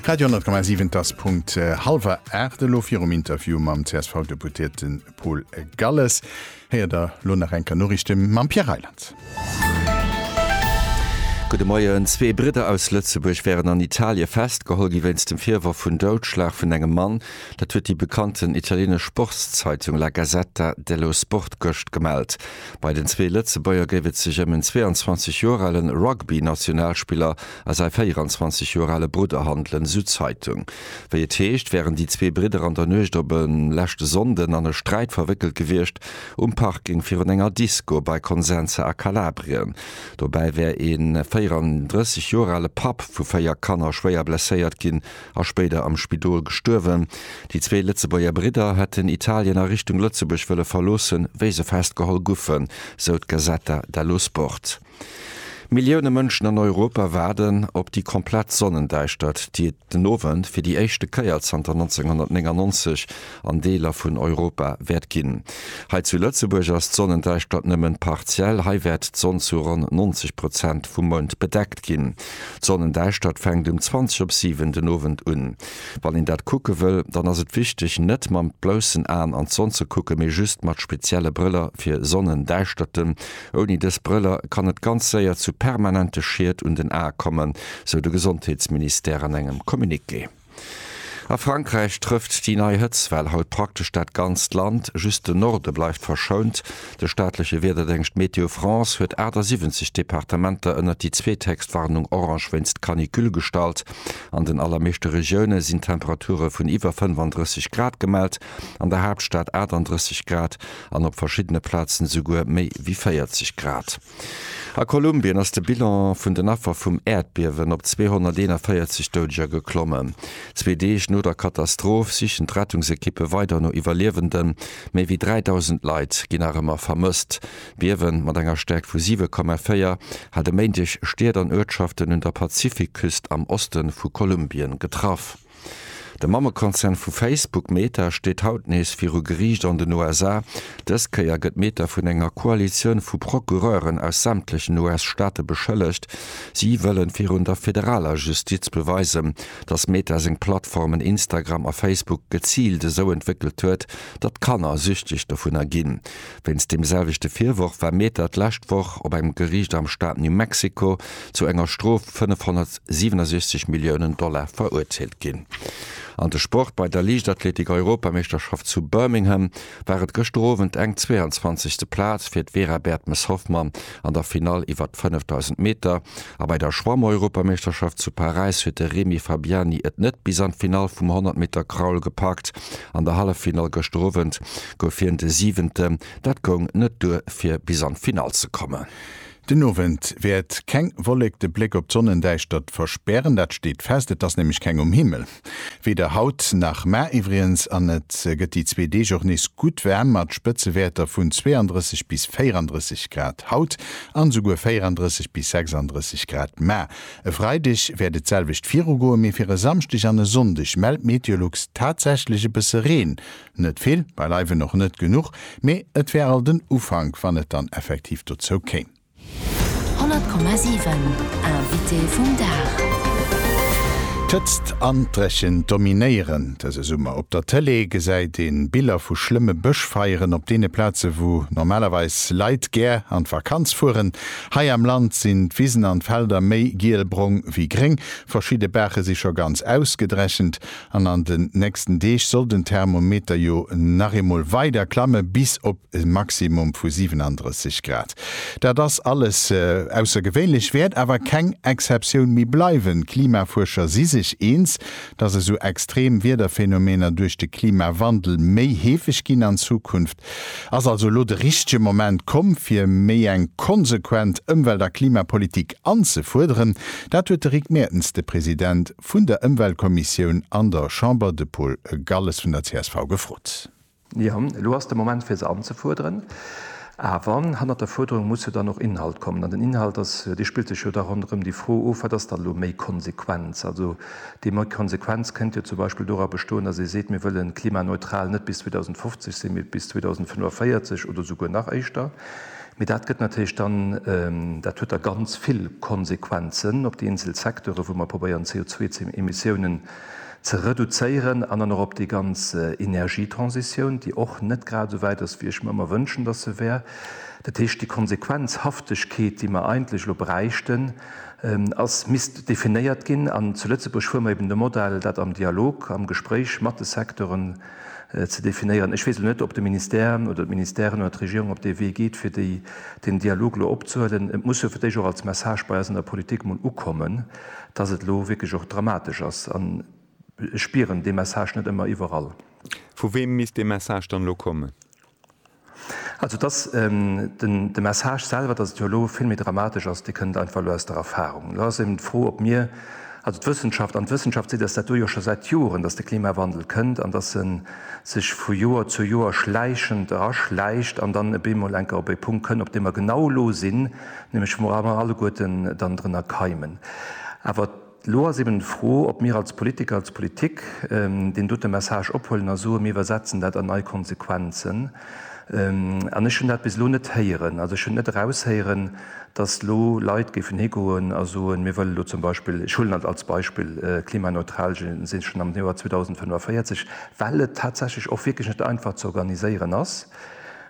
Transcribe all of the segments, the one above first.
Radio 10,7 das Punkt äh, halber Erde lo fir um Interview mam CSV-Deputierten Paul Galles. Heer der Lonarenker Norrichte mam Pierre Reiland. Gude Moien, zwee Bridder aus Lëtzebuerg wären an Italie festgeholl gi wéinst dem Virwor vun Doudschlag vun engem Mann. Dat huet déi bekannten italienesch Sportszeitung La Gazzetta dello Sport gëscht gemellt. Bei den zwee Lëtzebuerger géif et sech ëm en 22 Joer ale Rugby-Nationalspiller a säi 24 Joer ale Brudder handelen, esou d'Zeitung. Wéi et heescht, wären déi zwee Bridder an der Nuecht op e leschte Sonnden an e Sträit verwéckelt gewiescht, um Parking virun enger Disco bei Consenza a Kalabrien. Dobäi wär ee 34 Joer ale Papp vu véier Kanner schwéier blesséiert ginn, a spéider am Spidol gestuerwen. Déi zwee Lëtzebuerger Bridder hätten Italien a Richtung Lëtzebuerg wëlle verloossen, wéi se festgeholl guffen, sou d'Gazzetta dello Sport. Millioune Mënschen an Europa waarden op déi komplett Sonnendäischtert, déi et den Owend fir déi éischte Kéier zanter 1999 an Deeler vun Europa wäert ginn. Hei zu Lëtzebuerg ass d'Sonnendäischtert nëmmen partiell, hei wäert d'Sonn zu ronn 90 Prozent vum Mound bedeckt ginn. D'Sonnendäischtert fänkt um 20 op 7 den Owend un. Wann een dat kucke wëll, dann ass et wichteg net mam bloussen Aen an d'Sonn ze kucken, mee just mat spezielle Brëller fir Sonnendäischterten. Ouni dës Brëller kann et ganz séier zu permanente Schied un den Ae kommen, sou de Gesondheetsministère an engem Communiqué. A Frankräich trëfft déi nei Hëtzwell haut praktesch dat ganzt Land, just de Norde bleift verschount. De staatleche Wiederdéngscht Météo France huet 78 Departementer ënnert déi zweethéchstwarnung orange wéinst Canicule gestallt. An den allermeeschte Regioune sinn Temperature vun iwwer 35 Grad gemellt, an der Haaptstad 38 Grad an op verschiddene Plazen esouguer méi wéi 40 Grad. A Kolumbien ass de Bilan vun den Affer vum Äerdbiewen op 241 Doudeger geklommen. Zwee Deeg no der Katastroph sichen d'Rettungsekippe weider no Iwwerliewenden. Méi wéi 3.000 Leit ginn nach ëmmer vermësst. D'Biewe mat enger Stäerkt vu 7,4 hat e Méindeg Stied an Uertschaften un der Pazifikküst am Oste vu Kolumbien getraff. De Mammekonzern vu Facebook, Meta, steet haut nees viru Geriicht an den USA. Dës Kéier gëtt Meta vun enger Koalitioun vu Procureuren aus sämtlechen US-Staate beschëllegt. Si wëllen virun der federaler Justiz beweisen, datt Meta seng Plattformen Instagram a Facebook geziilt esou entwéckelt huet, datt Kanner süchteg dovunner ginn. Wéinst deem selwechte Virworf war Mehta d'lescht Woch op engem Geriicht am Staat New Mexico zu enger Strof 567 Milliounen Dollar verurteelt ginn. An de Sport, Bei der Liichtathletik-Europameeschterschaft zu Birmingham war et gëschter Owend eng 22. Plaz fir d'Vera Bertmes-Hoffmann an der Finall iwwert d'Fënneftausend Meter a bei der Schwammeuropameeschterschaft zu Paräis huet de Remy Fabiani et net bis an d'Finall vum 100 Meter Crawl gepackt. An der Halleffinall gëschter Owend gouf hien de Siwenten, dat goung net duer fir bis an d'Finall ze kommen. Den Owend wäert keng Wollek de Bléck op d'Sonnendäischtert verspären, dat steet fest, et ass nämlech keng um Himmel. Weder haut nach mar iwwriens an et gëtt déi zwee Deeg och nees gutt waarm mat Spëtzewäerter vun 32 bis 34 Grad haut an esouguer 34 bis 36 Grad mar. E Freideg wäert et selwecht virugoen, mee fir e Samschdeg an e Sonndeg mellt Meteolux tatsächlech e bësse Reen. Net vill, beileiwen och net genuch, mee et wär alt en Ufank wann et dann effektiv dozou kéim. 100,7 Invité vum Dag. D'Hëtzt an d'Dréchent dominéieren dëse Summer. Op der Tëlee gesäit ee Biller vu schlëmme Bëschfeieren op deene Plaze wou normalerweis Leit gär an d'Vakanz fueren. Hei am Land sinn d'Wisen an d'Felder méi gielbrong wéi gréng, verschidde Baache si scho ganz ausgedrechent an an den nächsten Deeg soll den Thermometer jo nach eemol weider klamme bis op e Maximum vu 37 Grad. Dat ass alles aussergewéinlech, wäert awer keng Exceptioun méi bleiwen. D'Klimafuerscher si sech eens, dass esou extrem Wiederphenomener duerch de Klimawandel méi heefeg ginn an Zukunft. Ass also elo de richtege Moment komm, fir méi eng konsequent Ëmwelt a Klimapolitik anzefuerderen? Dat huet de Rick Mertens de President vun der Ëmweltkommissioun an der Chamber, de Paul Galles vun der csv, gefrot. Jo, elo ass de Moment fir se anzefuerderen, awer hannert der Fuerderung muss jo dann och Inhalt kommen. An den Inhalt ass, dee spillt sech jo da ronderëm déi Fro of, wat ass dann elo méi Konsequenz? Also déi méi Konsequenz kënnt jo zum Beispill dora bestoen, datt ee seet, mir wëlle klimaneutral net bis 2050 sinn, mee bis 2045 oder souguer nach éischter. Mee dat gëtt natierlech dann, dat huet da ganz vill Konsequenzen op déi eenzel Secteure wou mer probéieren CO2-Emissiounen ze reduzéieren an dann och op déi ganz Energietransitioun, déi och net grad esou wäit ass, wéi ech mer ëmmer wënschen, dass se wär. Dat heescht, déi Konsequenzhaftegkeet, déi mer eigentlech elo bräichten, ass, misst definéiert ginn. An zu Lëtzebuerg hu mer eben de Modell, dat am Dialog, am Gespréich mat de Secteuren ze definéieren. Ech weess elo net, ob de Ministère oder d'Ministèren oder d'Regierung op dee Wee geet, fir deen Dialog elo opzehuelen. Et muss jo fir d'éischt och als Message bei eis an der Politik emol ukommen. dass et elo wierklech och dramatesch ass. An ech spieren dee Message net ëmmer iwwerall. Vu weem misst dee Message dann elo kommen? Also, dass de Message selwer, dass et jo elo vill méi dramatesch ass, dee kënnt einfach elo aus der Erfahrung. Elo ass eben d'Fro, ob mir, also d'Wëssenschaft, an d'Wëssenschaft seet eis dat do jo scho säit Joren, dass de Klimawandel kënnt an dass e sech vu Joer zu Joer schläichend eraschläicht an dann e beemol enker op e Punkt kënnt, op deem mer genau elo sinn, nämlech wou mer alleguerten dann drënner keimen. Awer elo ass eben d'Fro, ob mir als Politiker, als Politik deen dote Message ophuelen a soe mir iwwersetzen dat an nei Konsequenzen. An ech hunn dat bis elo net héieren. Also ech hunn net eraushéieren, dass elo Leit géifen higoen a soen, mir wëllen elo zum Beispill, ech huelen et als Beispill, klimaneutral si schonn am Joer 2045, well et tatsächlech och wierklech net einfach ze organiséieren ass.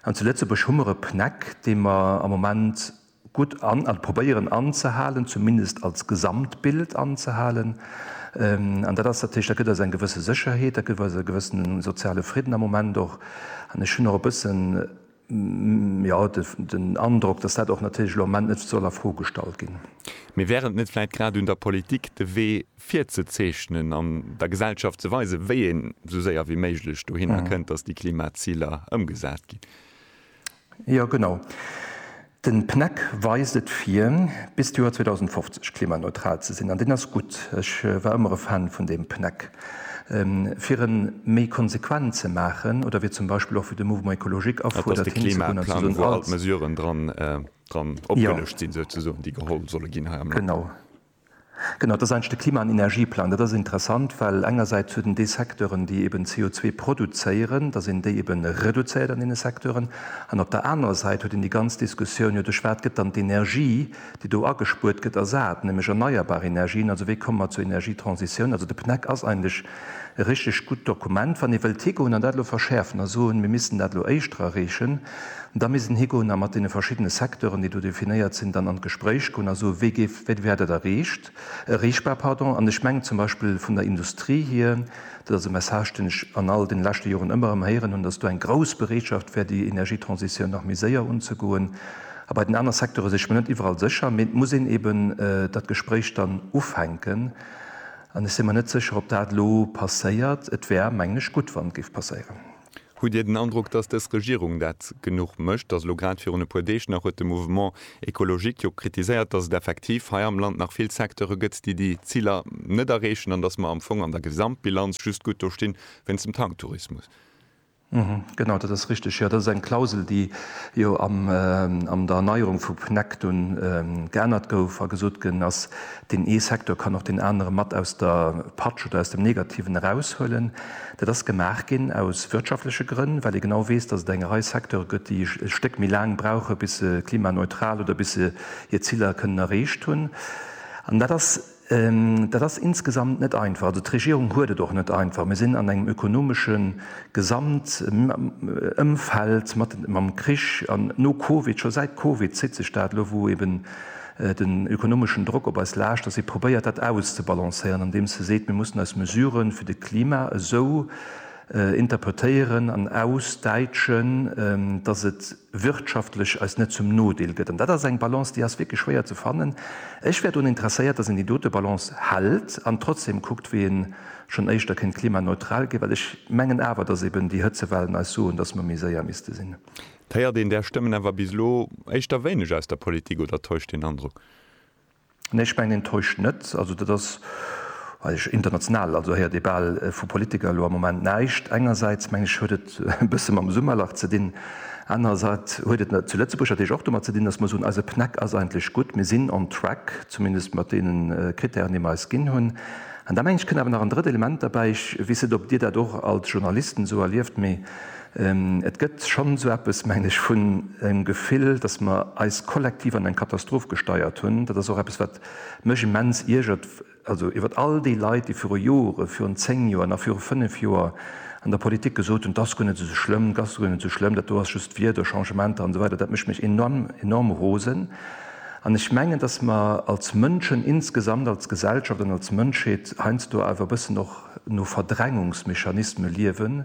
An zu Lëtzebuerg hu mer e PNEC, dee mer am Moment gutt an, also probéieren anzehalen, zumindest als Gesamtbild anzehalen. An dat ass natierlech, dat gëtt eis eng gewësse Sécherheet, dat gëtt eis e gewësse soziale Fridden am Moment och. An ech hunn och e bëssen, jo, den Androck, dass dat och natierlech elo am Moment net soll a Fro gestallt ginn. Mee wär et net vläicht grad un der Politik, de Wee virzezeechnen an der Gesellschaft ze weisen, wéi een esou séier wéi méiglech dohinner kënnt, datt déi Klimaziler ëmgesat ginn. Jo, genau. De PNEC weist et vir, bis d'Joer 2050 klimaneutral ze sinn. An deen ass gutt. Ech war ëmmer e Fan vun deem PNEC. Fir e méi konsequent ze maachen, oder wéi zum Beispill och wéi de Mouvement écologique afuerdert, hinzegoen an ze soen, alt. Dat ass de Klimaplang, wou all d'Mesuren dran opgelëscht sinn, souzesoen, déi geholl solle ginn hei am Land. Genau. Genau, dat ass eigentlech de Klima an Energieplang. Dat ass interessant, well engersäits huet en déi Secteuren, déi eben CO2 produzéieren, datt een déi eben reduzéiert an deene Secteuren, an op der anerer Säit huet een déi ganz Diskussioun, jo duerch wat gëtt dann d'Energie, déi do agespuert gëtt, ersat, nämlech erneierbar Energien. Also wéi komme mer zur Energietransitioun? Also de PNEC ass eigentlech E richteg gutt Dokument. Wann ee wëllt higoen an dat elo verschäerfen a soen, mir missten dat elo éischter erreechen, da misst en higoen a mat deene verschiddene Secteuren, déi do definéiert sinn, dann an d'Gespréich goen a soen, wéi géif, wéi wär dat erreecht, erreechbar, pardon. An ech mengen zum Beispill vun der Industrie hier, dat ass e Message, deen ech an all deene leschte Joren ëmmer erëm héieren hunn, dass do eng grouss Bereetschaft wär, déi Energietransitioun nach méi séier unzegoen. A bei den aner Secteuren si ech mer net iwwerall sécher. Mee et muss een eeben dat Gespréich dann ufänken. An ech sinn mer net sécher, ob dat elo passéiert. Et wär, mengen ech, gutt, wann et géif passéieren. Hutt Dir den Androck, dass dës Regierung dat genuch mécht? Dass elo grad virun e puer Deeg nach huet de Mouvement écologique jo kritiséiert, dass et effektiv hei am Land nach vill Secteure gëtt, déi déi Ziler net erreechen an dass mer am Fong an der Gesamtbilanz just gutt do stinn, wéinst dem Tanktourismus. Genau, dat ass richteg. Jo, dat ass eng Klausel, déi jo an der Erneierung vu PNEC dunn geännert gouf a gesot ginn ass, deen ee Secteur kann och deen anere mat aus der Patsch oder aus dem Negativen eraushuelen. Dat ass gemaach ginn aus wirtschaftleche Grënn, well ee genau weess, datt et eng Rei Secteure gëtt, déi e Stéck méi laang brauchen, bis se klimaneutral oder bis se hir Ziller kënnen erreecht hunn. An dat ass Dat ass insgesamt net einfach. Also d'Regierung huet et och net einfach. Mir sinn an engem ökonomesche Gesamtëmfeld mam Krich an no Covid, scho säit Covid zitt sech dat elo, wou eeben den ökonomeschen Drock op eis laascht, dass ee probéiert, dat auszebalancéieren, andeems e seet, mir mussen eis Mesuren fir de Klima esou interpretéieren an ausdäitschen, dass et, wirtschaftlech eis net zum Nodeel gëtt. An dat ass eng Balance, déi ass wierklech schwéier ze fannen. Ech wär drun interesséiert, dass een déi dote Balance hält an trotzdeem kuckt, wéi ee schonn éischter kéint klimaneutral ginn, well ech mengen awer, dass eben déi Hëtzewellen eis soen, dass mer méi séier misste sinn. Et héiert een där Stëmmen awer bis elo éischter wéineg aus der Politik, oder täuscht deen Androck? Nee, ech mengen, een täuscht net. Also dat ass, weess ech, international, also héiert ee bal vu Politiker elo am Moment näischt. Engersäits, meng ech, huet et e bësse mam Summerlach ze dinn, anerersäits huet et zu Lëtzebuerg natierlech och domat ze dinn, datt mer soen, eise PNEC ass eigentlech gutt, mir sinn on track, zumindest mat deenen Krittären, déi mer eis ginn hunn. An da meng ech, kënnt awer nach en drëtt Element derbäi, ech weess net, ob Dir dat och als Journalisten esou erlieft, mee Et gëtt schonn esou eppes, mengen ech, vun engem Gefill, datt mer eis kollektiv an eng Katastroph gesteiert hunn. Dat ass och eppes, wat mech immens iergert, also iwwer all déi Leit, déi viru Joren, virun zéng Joer, nach viru fënnf Joer an der Politik gesot hunn, 't ass guer net esou schlëmm, 't ass guer net esou schlëmm, dat do ass just Wieder, Changementer an esou weider. Dat mécht mech enorm, enorm rosen. An ech mengen, datt mer als Mënschen insgesamt, als Gesellschaft an als Mënschheet heiansdo awer e bëssen och no Verdrängungsmechanisme liewen,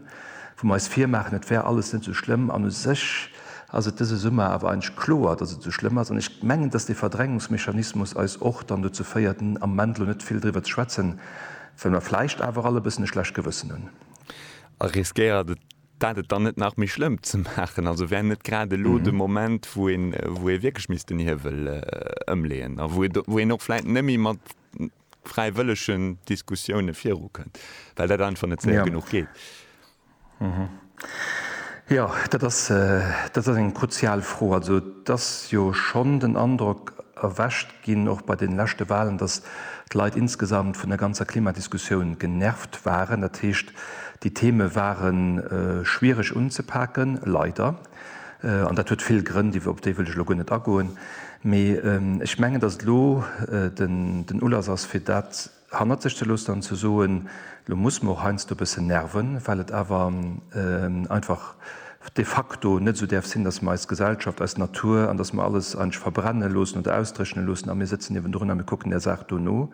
wou mer eis virmaachen, et wär alles net esou schlëmm, an u sech ass et dëse Summer awer eigentlech kloer, datt et esou schlëmm ass, an ech mengen, datt dee Verdrängungsmechanismus eis och dann dozou féiert, am Moment elo net vill driwwer ze schwätzen, well mer vläicht awer all e bëssen e schlecht Gewëssen hunn. A riskéiert et dat et dann net nach méi schlëmm ze maachen? Also wär net grad elo de Moment, wou ee wierklech misst den Hiewel ëmleeën a wou een och vläicht net méi mat fräiwëllegen Diskussioune virukënnt, well dat einfach net séier genuch geet. Jo, dat ass, dat ass eng kruzial Fro. Also et ass jo schonn den Androck erwächt ginn, och bei deene leschte Wahlen, datt d'Leit insgesamt vun der ganzer Klimadiskussioun genervt waren. Dat heescht, déi Theme ware schwiereg unzepaken, leider. An dat huet vill Grënn, déi, op déi wëll ech elo guer net agoen. Mee ech mengen, datt et elo den, den Ulass ass, fir dat hannert sech ze loossen an ze soen, Elo muss mer och heiansdo e bëssen nerven, well et awer einfach de facto net esou däerf sinn, datt mer eis Gesellschaft, eis Natur, an datt mer alles eigentlech verbrenne loossen oder ausdréchne loossen a mir sëtzen niewendrun a mir kucken där Saach do no.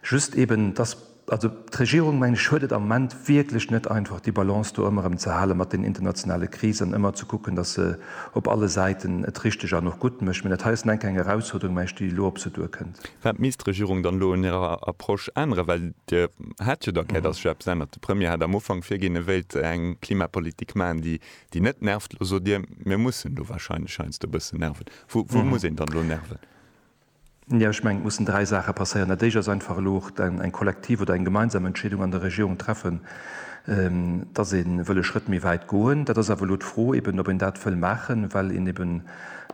Just eeben, datt. Also, d'Regierung, mengen ech, huet et am Moment wierklech net einfach, déi Balance do ëmmer erëm ze halen mat den internationale Krisen, ëmmer ze kucken, dass se op alle Säiten et richteg an och gutt mécht. Mä dat hei ass nun enk eng Erausfuerderung, mengen ech, déi elo op se duerkënnt. Wat misst d'Regierung dann elo un hirer Approche änneren? Well Dir hat jo d'Erkär, dass sech eppes ännert. De Premier hat am Ufank virginn, e wéilt eng Klimapolitik maachen, déi net nervt. Elo sot Dir, mir mussen elo wahrscheinlech heiansdo e bëssen nerven. Wou muss een dann elo nerven? Jo, ech mengen, et mussen dräi Saache passéieren. Dat Éischt ass einfach elo och eng kollektiv oder eng gemeinsam Entscheedung an der Regierung treffen, dass ee wëll e Schrëtt méi wäit goen. Dat ass awer elo d'Fro eben, ob een dat wëll maachen, well een eben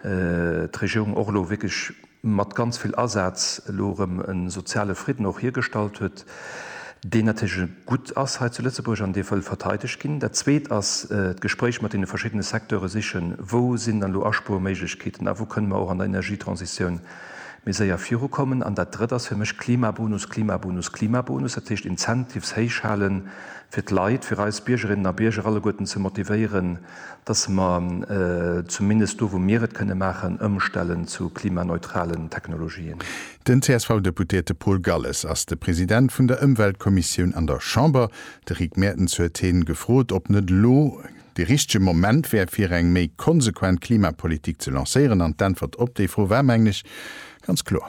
d'Regierung och elo wierklech mat ganz vill Asaz elo erëm e soziale Fridden och hiergestallt huet, deen natierlech gutt ass hei zu Lëtzebuerg an dee wëll verteidegt ginn. Dat Zweet ass d'Gespréich mat deene verschiddene Secteure sichen, wou sinn dann elo Aspuerméiglechkeeten a wou kënne mer och an der Energietransitioun méi séier virukommen. An dat Drëtt ass fir mech Klimabonus, Klimabonus, Klimabonus. Dat heescht, Incentives héichhalen fir d'Leit, fir eis Biergerinnen a Bierger alleguerten ze motivéieren, dass mer zumindest do, wou mir et kënne maachen, ëmstellen zu klimaneutralen Technologien. Den CSV-Deputéierte Paul Galles ass de President vun der Ëmweltkommissioun an der Chamber. De Rick Mertens huet hien gefrot, ob net elo de richtege Moment wär, fir eng méi konsequent Klimapolitik ze lancéieren. An d'Äntwert op déi Fro war, mengen ech, ganz kloer.